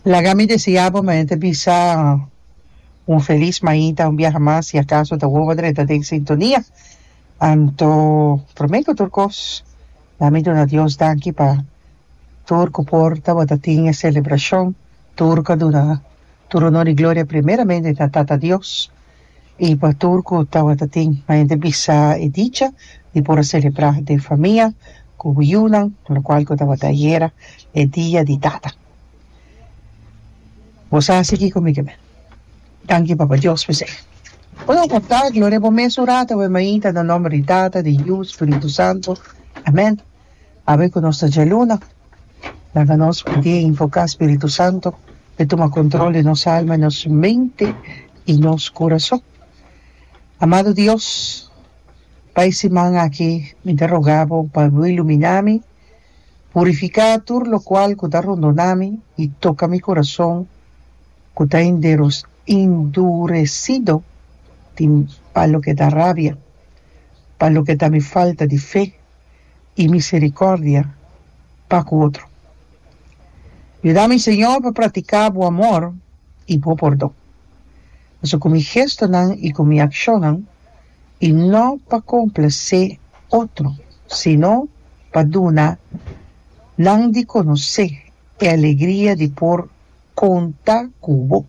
Laga mi desea bo mañana bisa un felis mañita un biaha mas si acaso ta wowo dret ta den sintonia anto prome cu tur cos a mi duna Dios danki pa tur cu por ta bo ta tin e celebracion tur cu a duna tur honor y gloria primeramente ta Tata Dios I pa tur ku tabata tin mayente bisa e dicha di por a selebrá den famia ku yunan, lokual ku tabata ayera e Dia di Tata. Bos a hasi kiko mi ke me? Danki Papa Dios p'esei. Bos a da gloria bo mes un rato, Awe Maita, na nòmber di Tata, di Yu, Spiritu Santu. Amèn. Awe ku nos ta dje luna, laga nos pidi invoká spiritu santu pa e tuma kontrol di nos alma, nos mente i nos kurason. Amado Dios, pa e siman aki mi ta rogá bo pa bo iluminá mi, purifiká tur lokual ku ta rondona mi i toka mi kurason ku ta induresido pa loke ta rabia, pa loke ta mi falta di fe. i misericordia pa cu otro. Yuda mi, Señor, pa practica bo amor i bo pordon, pasobra cu mi gestonan i cu mi accionnan i no pa complace otro, sino pa duna nan di conoce e alegria di por conta cu bo.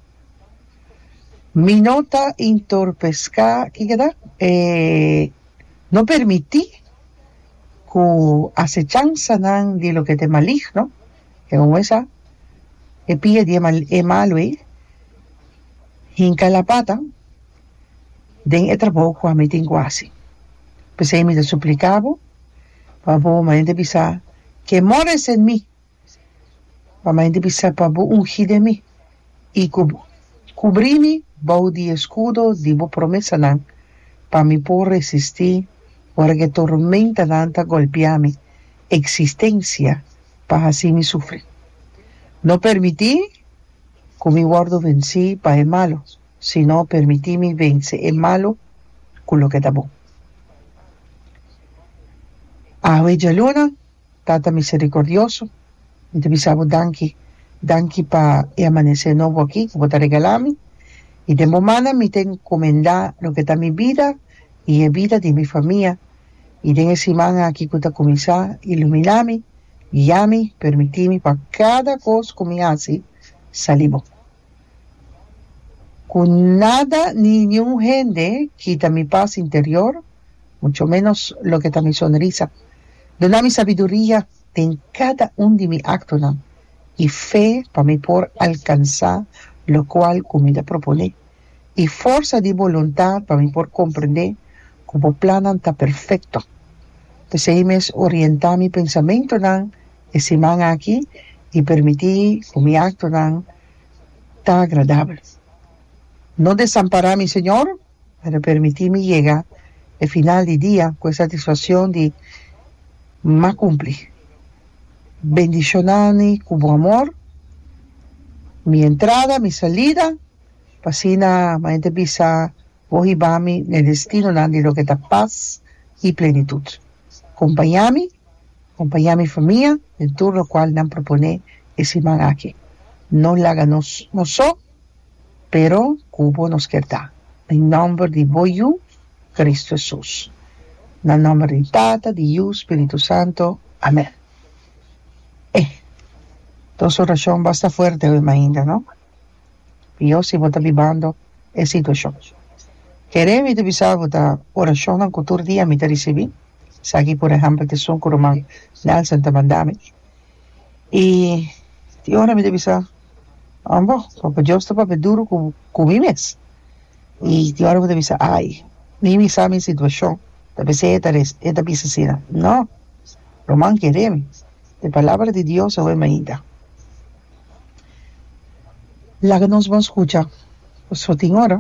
Mi no ta intorpesca, kiko ta? E. No permití ku asechansanan di loke ta e maligno, e homber sa, e pia di e malu ei, hinka e lapata den e trabou ku ami tin ku hasi. P'esei mi ta supliká bo, pa bo manera di bisa, Kemora e sèn mi! Pa mai di bisa pa bo ungí den mi, i ku bo kubrí mi bou di e skudo di bo promesanan, pa mi por resistí ora ku e tormentanan ta golpiá mi eksistensia pa hasi mi sufrí. No permití ku mi wòrdu vensí pa e malu, sino permití mi vense e malu ku loke ta bon. Awe djaluna. Tata miserikordioso, mi ta bisa bo danki, danki pa e amanesé nobo akí ku bo ta regalá mi, i den bo man nan mi ta enkomendá loke ta mi bida i e bida di mi famia, i den e siman akí ku ta kuminsá, iluminá mi, guia mi, permití mi pa kada kos ku mi hasi sali bon. Ku nada ni niun hende kita mi pas interior, mucho ménos loke ta mi sonrisa. Duna mi sabiduria den kada un di mi aktonan, i fe pa mi por alkansá lokual ku mi ta proponé, i forsa di boluntá pa mi por komprendé ku bo plannan ta perfekto. P'esei mes orientá mi pensamentunan E siman aki i permití ku mi aktonan ta agradabel. No desampará mi, Señor, pero permití mi yega e final di dia ku e satisfakshon di m'a kumplí. Bendishonani ku bo amor mi entrada, mi salida, pa asina m'a e ta bisa bo hiba mi n'e destinonan di loke ta pas i plenitut. Kompañá mi. Acompaña mi famia den tur locual nan propone e siman aki. No laga nos nos so, pero cu bo nos kier ta. Den nomber di bo Yu, Cristo Hesus. Na nomber di Tata, di Yu, Spiritu Santo. Amen. Eh! Nos oracion basta fuerte awe mainda, no? Pio si bo ta bibando e situashon. Kere mi ta bisa bo ta orashonnan ku tur dia mi ta risibí, esaki por ehèmpel ta esun ku ruman Nelson ta manda mi. I tin ora mi ta bisa, Ambo, Papa Dios ta papia duru ku ku mi mes. I tin ora bo ta bisa, Ai, mi mi sa mi situashon, ta p'esei e ta res e ta bisa asina. No, ruman, kere mi, e palabra di Dios awe mainta. Laga nos bon scucha pasobra tin ora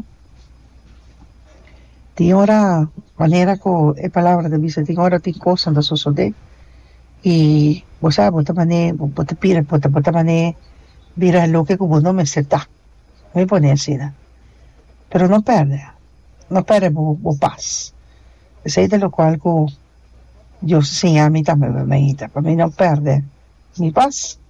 tin ora manera cu e palabra ta bisa tin ora tin cosa ta sosode y bo sabe bo ta mane bo ta pira bo ta bo ta mane bira loke cu bo no mester ta me i pone asina pero no perde no perde bo bo pas esey ta locual cu Dios a siñami tambe pa mi ta pa mi no perde mi pas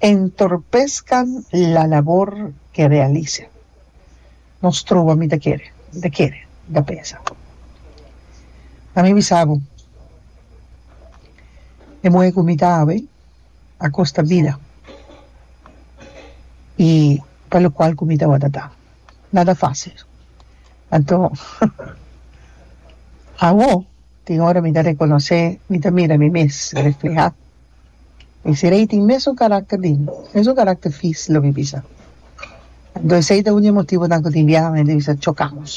Entorpesca la labor ke realisa. Nos trobo ami ta kere, mi ta kere, mi ta pensa. M'a mi bisa bo, e muhe ku mi ta hawe a kosta bida i pa lokual ku mi tabata ta. Nada fásil. Anto, awo tin ora mi ta rekonosé, mi ta mira mi mes reflehá. Esei tin mesun karakter di mesun karakter fis lo mi bisa. Anto esei ta un di e motibonan ku tin biaha hende bisa chokamos.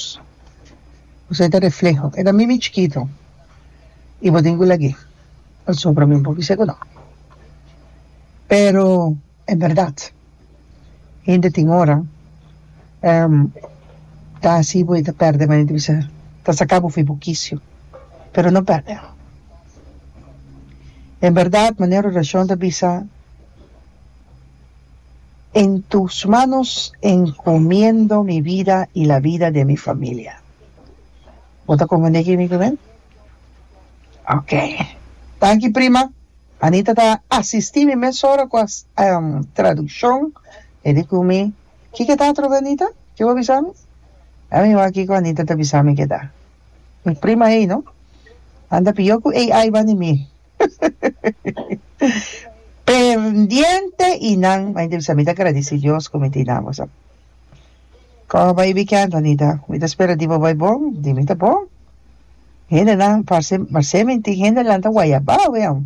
Ku esei ta refleho. E ta mimi chikito i bo tin ku lag'é pasobra mi bo bisa ku no. Pero. E berdad. Hende tin ora ehm ta hasi bo y ta perde bo hende bisa ta saca bo fi bo kicio pero no perde no. En berdad manera oracion ta bisa en tus manos encomiendo mi vida y la vida de mi familia. Bo ta comprende kico mi ta biba? Ok. Tanki prima. Anita ta asistí mi mesora ku tradukshon. E di ku mi, Kiko e ta atrobe Anita? Ke bo bisa mi? Ami wak kiko Anita ta bisa mi ke ta. Mi prima ei no. Nan ta pió ku AI ban di mi. Pendiente i nan, m'a intèr bisa mi ta gradisí Dios ku mi tin nan, bo sa. Koh bai bikènt Anita. Mi ta spera di bo bai bon, di mi ta bon. Hendenan parse marsé minti hendenan ta wayabao wian.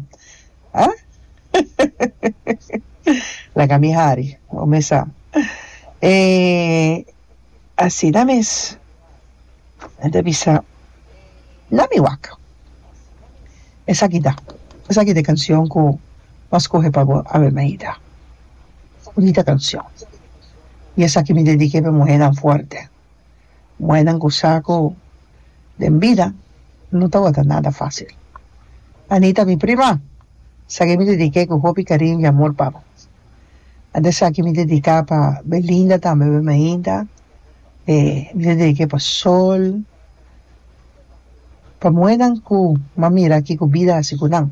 Ha? Laga mi hari, bo mes sa. E asina mes mi ta bisa na mi wak. Esaki ta, esaki ta e canción cu mi a scoge pa bo, Ave Maida. Bonita canción. y esaki mi dedique pa e muhernan fuerte. Muhernan cu sa cu den bida no ta wata nada facil. Anita mi prima, sa que mi dedique cu hopi cariño y amor pa bo. Antes esaki mi dedica pa Belinda tambe, Bermehinda, e mi ta dedique pa Sol, pa muhernan cu m'a mira kico bida haci cu nan.